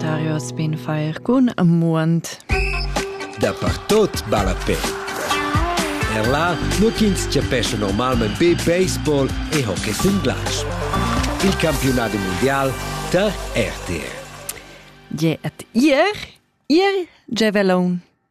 Dario as bin fair cun amuond. Dapertot balla pe. Er là, nur ch'ins chapescha normalmain be baseball e hockey sin glatsch. Il campiunat mundial tar RTR. Je et ihr, ihr Javelon.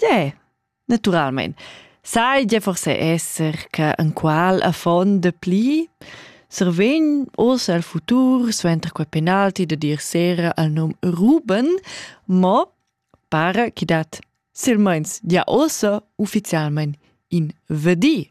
Deh, naturalmein. Sai gia forse esser che en qual affon de pli survegn oz al futur suenter quei penalti de dir sera al num Ruben, mo para che dat silmeins gia ossa ufficialmein in vedi.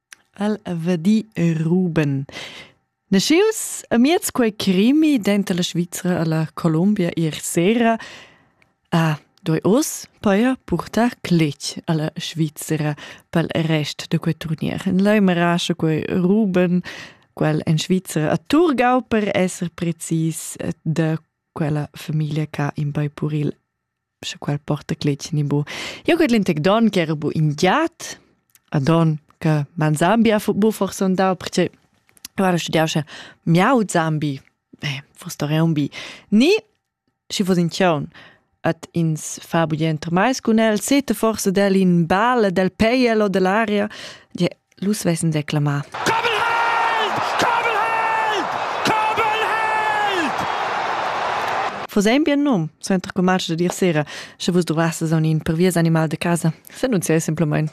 El va di Ruben. Naschius amiez quei crimi denter la Svizra e la Colombia ier sera ha doi oz paia purtar cletg alla Svizra pel rest da quei turnier. En lai marascha quei Ruben, quel en Svizra a Turgau per esser precis de quella famiglia che in bei puril sche quel porta cletg ni bu. Jo got lintec don che era bu in giat, a don che man Zambia fu bu forse andau perché guarda studiau sche miau Zambi, eh, forse era un bi. Ni schi fos in chion at ins fa bugien mai cun el, sete forse del in bale del peiel o dell'aria, je Nus vessen declamà. Vos ein bien num, suenter commerci da dir sera, sche vus dovrasses aun in perviers animal de casa, s'annunziai simplemein.